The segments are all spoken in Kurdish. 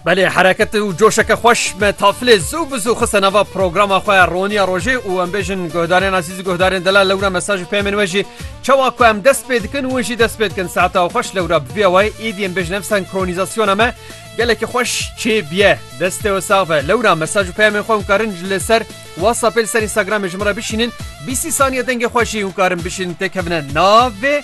Belê hereket û coşeke xweş me tafilê zû bi zû xiste nava programa xwe roniya rojê û em bêjin guhdarên azîz û guhdarên dela lewra mesaj û pêmên we jî çawa ku em dest pê dikin win jî dest pê dikin saeta xweş lewra bi vîya wayê êdî em bêjin ev senkronizasyona me gelekî xweş çê biye destê we sax be lewra mesaj û pêmên xwe karin li ser WhatsAppê li ser Instagramê ji min re bişînin bîsî saniye dengê xwe jî hûn karin bişînin têkevine navê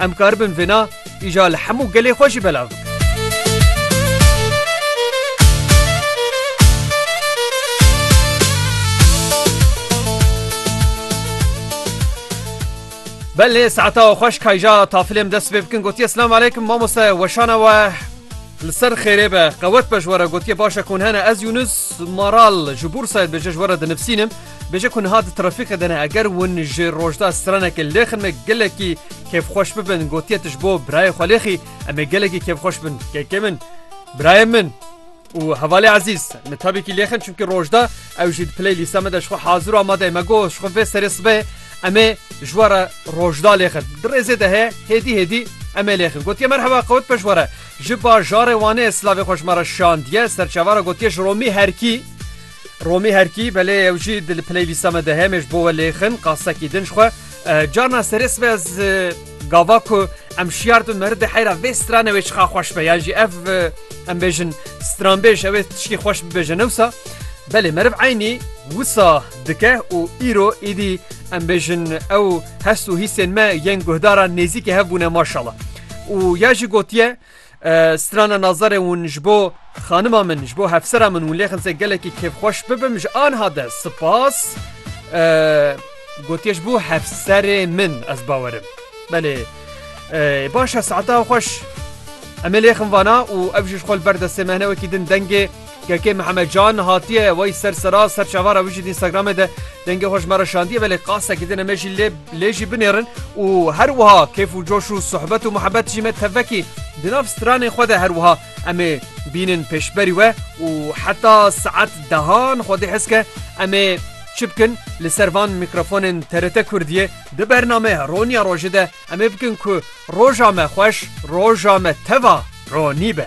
Em karibin vêna îja li hemû gelê xwe jî belav bikin. Belê saeta xweş kayja tafilêm dest pê bikin gotiye Slam aleykum mamoste weşana we li ser xêrê be qewet be ji were gotiye başe kon hene ez Yunus maral ji Bursayê dibêje ji were dinivsînim Bêje ku niha di trafîkê de ne eger win ji rojda stranekê lêxin me gelekî kêfxweş bibin gotiye tu ji bo birayê xwe lêxî em ê gelekî kêfxweş bin kekê min birayê min û hevalê ezîz min tabîkî lêxin çimkî rojda ew jî di piley lîsa me de ji xwe hazir û amade me go ji xwe vê serê sibê em ê ji we re rojda lêxin di rêzê de heye hêdî hêdî em ê lêxin gotiye merheba qewt peş were ji bajarê wanê slavê xweşmara şandiye serçavara gotiye ji romî herkî Romî herkî belê ew jî di li playlîsta me de hemêj bo we lêxin qasekî din ji xwe carna serê sibe ez gava ku em şiyar dibin meri de heyra vê stranê wê çiqa xweş be yan jî ev em bêjin stranbêj ew ê tişkî xweş bibêje newsa belê meriv eynî wisa dike û îro îdî em bêjin ew hest û hîsên me yên guhdara nêzîkê hev bûne maşala û ya jî gotiye Strana nazarê wûn ji bo xanima min ji bo hevsera min wûn lêxinse gelekî kêfxweş bibim ji anha de sipas gotiye ji bo hevserê min ez bawerim belê baş e saeta xweş. Em ê lêxin vana û ev jî ji xwe li ber destê me hene wekî din dengê Kekê Mihemed Can hatiye wey ser sera ser çavara wî jî di Instagramê de dengê xwe ji me re şandiye belê qasekî din me jî lê lê jî binêrin û her wiha kêf û coş û sohbet û muhebet jî me tevekî di nav stranên xwe de her wiha em ê bînin pêşberî we û heta saet dehan xwedî hes ke em ê çi bikin li ser van mîkrofonên TRT Kurdiyê di bernameya Roniya Rojê de em ê bikin ku roja me xweş roja me teva ronî be.